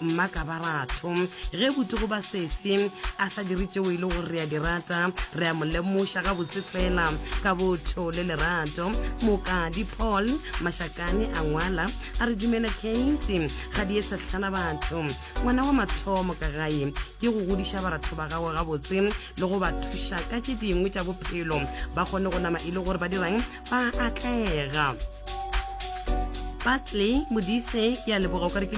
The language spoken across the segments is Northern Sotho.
Mma ka ba batho, ge bute go ba sesi a sa dire tšeo e le gore re a di rata, re a mo lemoša gabotse fela ka botho le lerato. Mokadi Paul Mašakane a ngwala a re, Dumela Keiti, ga di ye sehlana batho. Ngwana wa mathomo ka gae ke go godiša baratho ba gago gabotse le go ba thuša ka tše dingwe tša bophelo ba kgone go nama e le gore ba dirang, ba atlega patley modise ke a leboga o kare ke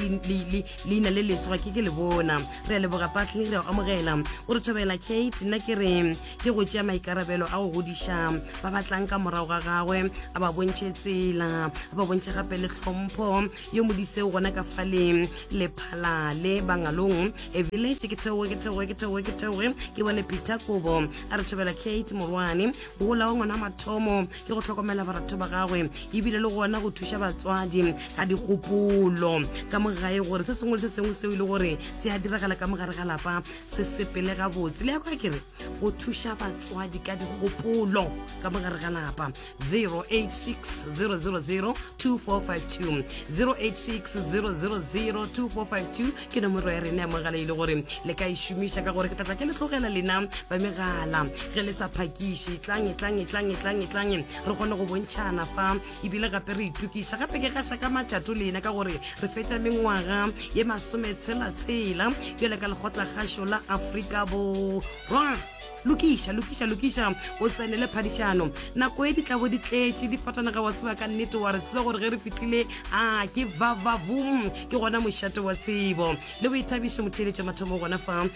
leina le leswa ke ke le bona re a leboga patley re a amogela o re thobela kate nna ke re ke go tšea maikarabelo a go godiša ba batlang ka morago ga gagwe a ba bontšhe tsela a ba bontšhe gape le tlhompho yo modise o gona ka faleng lephalale bangalong e village ke theoge ke theoge ke theoge ke theoge ke bone peter kobo a re thobela kate morwane Gola wa ngwana mathomo ke go hlokomela baratho ba gagwe ebile le gona go thuša batswadi ka dikgopolo ka mogae gore se sengwe le se sengwe seo e le gore se a diragala ka mogare ga lapa se sepele gabotse le ya kwa kere go thuša batswadi ka dikgopolo ka mogare ga lapa 086 000 2452 086 000 2452 ke nomoro ya rena ya mogala e le gore le ka e šomiša ka gore ke tlatla ke le tlogela lena ba megala ge le sa phakiše tlang e tlang e tlang e tlang e tlang e re kgone go bontšhana fa ebile gape re itokiša gape ke gaša ka matšato lena ka gore re fetša mengwaga ye masome tshelatshela bjale ka lekgotlakgašo la aforika borwa lokiša lokiša lokiša o tsenele phadišano nako e di tlabo di tletše di fatanaga wa tseba ka nnete wa re tseba gore ge re fitlile a ke vavavum ke gona mošate wa tsebo le boithabiše motheeletša mathomo gona fa um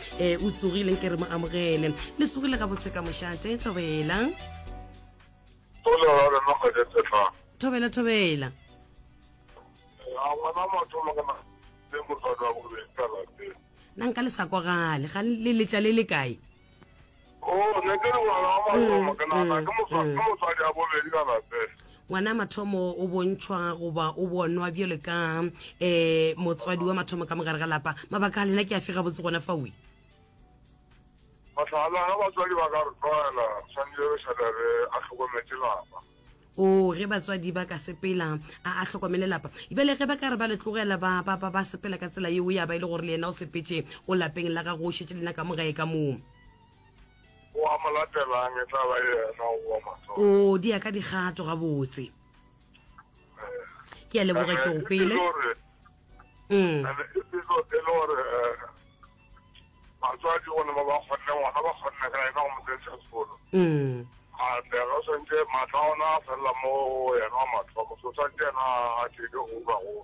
o tsogileng ke re mo amogele le tsogile gabotse ka mošate thobela thobela thobela ngwana mathomo kana le motswadi wa bobedi ka lapeng Na nka le sa kwagale ga le letša le le kae? Oo, ne ke le ngwana wa mathomo, ke nagana ke moswa- ke mosadi ya bobedi ka lapeng. Ngwana wa mathomo o bontšhwa goba o bonwa bjalo ka um motswadi wa mathomo ka mogare ga lapa. Mabaka a lena ke a fe gabotse gona fawe? Mohlala, ge batswadi ba ka re tlogela, re swanetše re šale re a hlokometše lapa. Oo, ge batswadi ba ka sepela, a, a hlokomele lapa. Bjale ge ba ka re ba le tlogela ba, ba, ba, ba sepela ka tsela yeo, ya ba e le gore le yena o sepetše, o lapeng la gagwe, o šetše le na ka mo gae ka moo. O a mo latelang, e tla ba yena o wa mathomo. Oo, di ya ka dikgato gabotse. Ke a leboga, ke go kwele. Ene e be e le gore, um. batswadi gona ba ba kgonne ngwana ba kgonne ka ena go mo kentšha sekolo ande ga o swantse maatla a ona a felela mo yena wa mathomo so swantse yena a teke go uka go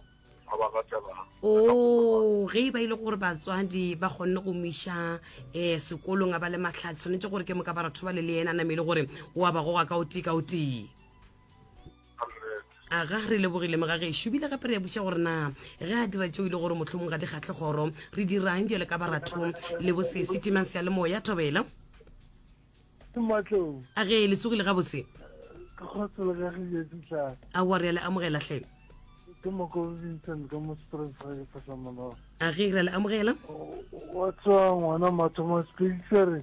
a ba latelang o ge e ba ile gore batswadi ba kgonne go miša um sekolong a ba le matlhatsi tshwanetse gore ke moka ba ratho ba le le yena a namele gore o a ba goga ka o tee ka o tee Aga re lebogile mogagešu bile gape re a butša gore na ge a dira tšeo e le gore mohlomong ga di kgatlhe kgoro re dirang bjale ka baratho le bose setimang se ya lemoya thobela Matlou. a ge le tsogile gabotse Ke kgotse le kagile ditlana. aowa re a le amogela hle Ke Mokobi Vincent ka mo Springs ga ke fahla morago. a ge re a le amogela Wa tswa ngwana mathomo speakisere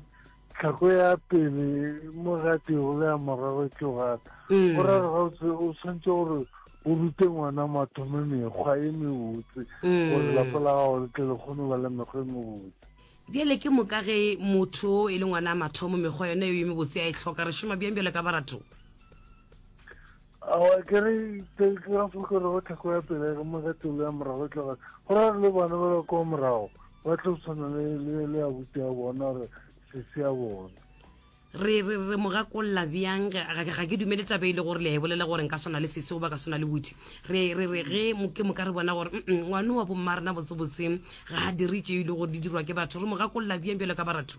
Tlhako ya pele mo gatego le ya morago ke gata. Mm. Go ra ga o tshwanetse gore o rute ngwana mathomo mekgwa e mebotse mm. gore lapa la gago le tle le kgone ba le mekgwa e mebotse bjale ke moka ge motho e le ngwana a mathomo mekgwa yone eo e mebotse a e tlhoka re šoma bjang bjale ka barato awa ke re ke ra fokere go thako ya pele ya kama ka telo ya morago tloga go ra le bana ba ba kwa morago ba tlo tshwana le le le abuti ya bona gore sese ya bona re re re mo gakolola bjang ge- ga ga ke dumele taba e le gore le a e bolela gore nka swana le sese goba ka swana le buti re re re ge mo- ke mo ka re bona gore "Mm-mm, ngwane wa bomma rena botsebotseng ga a dire tše e le gore di dirwa ke batho re mo gakolola bjang bjalo ka baratho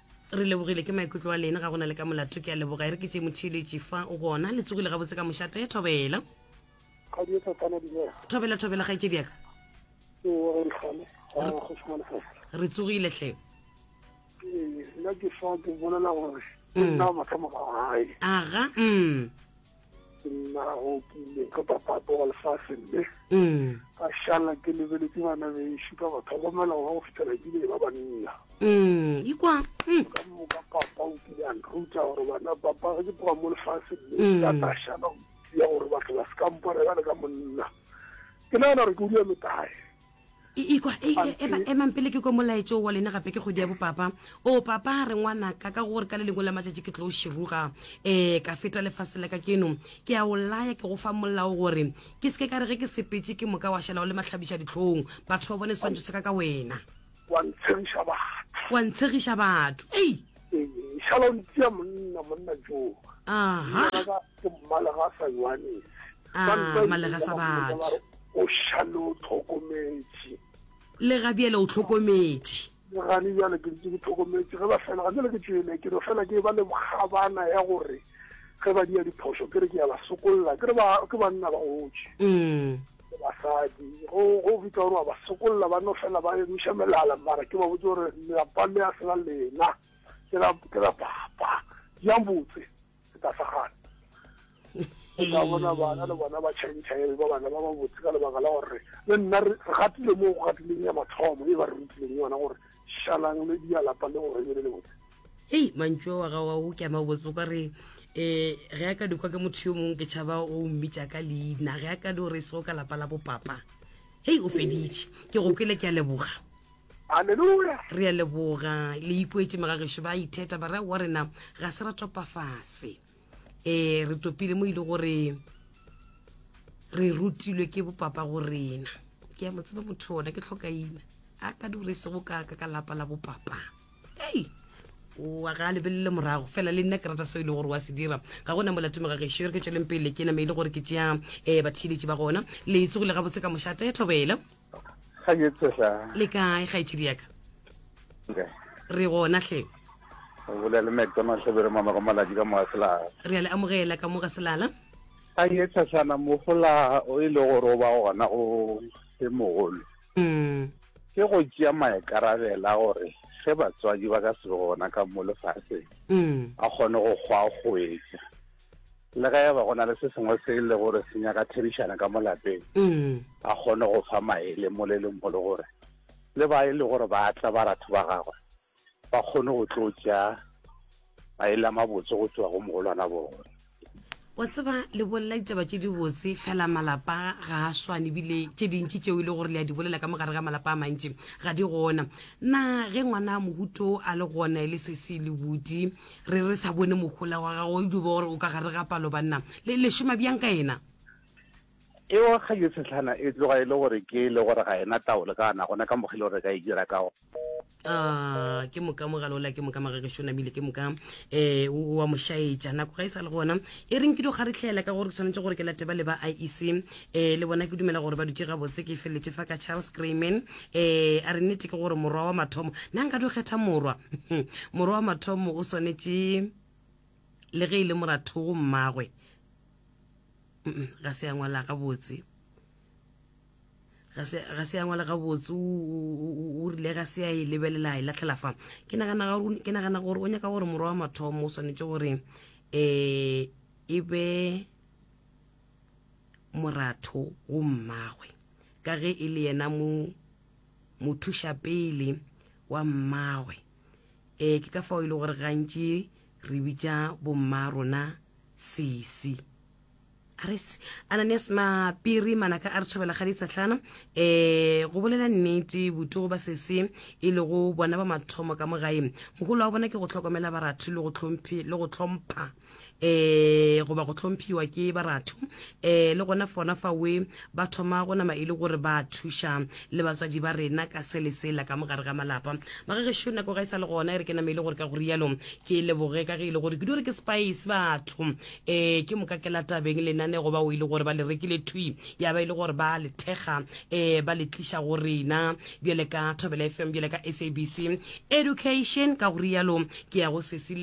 re lebogile ke maikutlo a lene ga go na le ka molato ke a leboga e re ke tše motheeletši fa o gona le tsogile gabotse ka mošate thobela thobela thobela ga etsedi yaka re tsogile hle nna ke fa ke bolela gore ke nna mathomo ga gae aga mm nna go kile ka papapa wa lefase mme mm. ka šala ke lebeletse bana bešu ka ba tlhokomela go ba go fitlhela ke bile ba banna mm, ikwa mm. ka moka papa o kile a nthuta gore bana papa ge ke tloga mo lefase mme ka ta šala ya gore batho ba se kampone ba le ka monna ke nagana gore ke o dula metae ikwa e, e, ema emang pele ke ko molaetso wa lena gape ke kgwedi ya bopapa o papa re ngwanaka ka gore ka le lengwe la matšatši ke tlo širuga um ka feta lefase la ka keno ke a o laya ke go fa molao gore ke seke ka re ge ke sepetse ke moka wa šala o le matlhabiša ditlhong batho ba bone swantšho sa ka ka wena Wa ntshegiša batho. Wa ntshegiša batho. Ei! Ee, šala o ntia monna, monna jo. Aha. Monna ka ke mmalega sa Johannes. Ah, mmalega sa batho. O šale o tlhokometše. Le ga bjale o tlhokometše. Le gane bjale ke ntse ke tlhokometše ge ba fela ga jale ke tšwele ke no fela ke ba le bokgabana ya gore ge ba dia diphoso ke re ke ya ba sokolla ke re ba ke banna ba gotše. Mm. basadi go go bitsa gore wa ba sokolla ba no fela ba emiša melala mara ke ba botse gore lelapa le a sela lena ke la ke la papa ya botse ke ta sa gana o ka bona bana le bona ba change e ba bana ba ba botse ka lebaka la gore le nna re gatile mo go gatileng ya mathomo e ba re rutileng yona gore šalang le dia lapa le gore le le botse hei mantšo wa ga wa o ke ama botse o ka re um ge a ka dikwa ke motho yo mongwe ke tšhaba o mmitša ka leina ge a ka di o re se o ka lapa la bopapa hei o feditše ke go kwele ke a leboga aleluya re a leboga le ipoetse magagešo ba itheta ba ra wa rena ga se ra topafase eh re topile mo e le gore re rutilwe ke bopapa go rena ke ya mo tseba motho ona ke tlhokaina a ka di gore sego ka ka ka lapa la bopapa ei wa ga a lebelele morago fela le nna ke rata seo e le gore wa se dira ga gona molato megagešo e re ke tsweleng pele ke name e le gore ke tšea um batheeletši ba gona le tsogo le gabotse ka mošate thobela ga ke tshega le kae kgaetšedi yaka okay. re gona hle o bolela le mcdonald tlhabere mama go malatsi ka moga selala re a le amogela ka moga selala ga ye tshasana mogola o e le gore o ba gona o se mogolo mm. ke go tšea maekarabela gore ge batswadi ba ka se gona ka mo lefatsheng mm. a kgone go kgwa go etsa le ge e ba go na le se sengwe se e le gore se nyaka therišana ka mo lapeng mm. a kgone go fa maele moleleng mo le gore le ba e le gore ba tla ba ratho ba gagwe ba kgone go tlo tša maele a mabotse go tšwa go mogolwana bone wa tseba le bolela ditaba tše dibotse fela malapa ga a swane ebile tše dintši tšeo e le gore le a di bolela ka mogare ga malapa a mantši ga di gona na ge ngwana a mohuto a le gona e le sese le bodi re re sa bone mohola wa gago e dubo gore o ka gare ga palo banna le le šoma bjang ka ena e wa ga yo setlhana e tloga e le gore ke le gore ga ena taolo ka ana gona ka mogile gore ka e dira ka go Ah, ke moka mogala ola ke moka magage shona bile ke moka eh wa moshaetša nako ga e sa le gona e reng ke do kgaretlhela ka gore ke tshwanetse gore ke late ba le ba IEC eh le bona ke dumela gore ba dutse gabotse ke feletse fa ka charles grayman eh a re nnete ke gore morwa wa mathomo na nka di kgetha morwa morwa wa mathomo o swanetše le ge e le morathogo mmagwe ga se ya ngwala gabotse ga se ya ngwala gabotse o rile ga se ya e lebelela e latlhela fa ke nagana gore o nyaka gore morwa wa mathomo o swanetše gore um e be moratho go mmagwe ka ge e le yena mo mothuša pele wa mmagwe e ke ka fao e le gore gantši re bitša bomma rona sesi aretse ananias mapiri manaka a re thobela ga ditsatlana um go bolela nnete botugo ba sese e lego bona ba mathomo ka mo gae mogolo wa bona ke go tlhokomela baratho le go tlhompha um goba go hlomphiwa ke baratho um le gona fona fawe ba thoma go nama e le gore ba thuša le batswadi ba rena ka se le sela ka mogare ga malapa magagešu nako ga e sa le gona e re ke nama e le gore ka go rialo ke leboge ka ge e le gore ke di gore ke spice batho um ke moka ke latabeng lenane goba o e le gore ba le rekile thwi ya ba e le gore ba le thekga um ba le tliša go rena bjale ka thobela fm bjale ka sabc education ka go rialo ke ya go sesile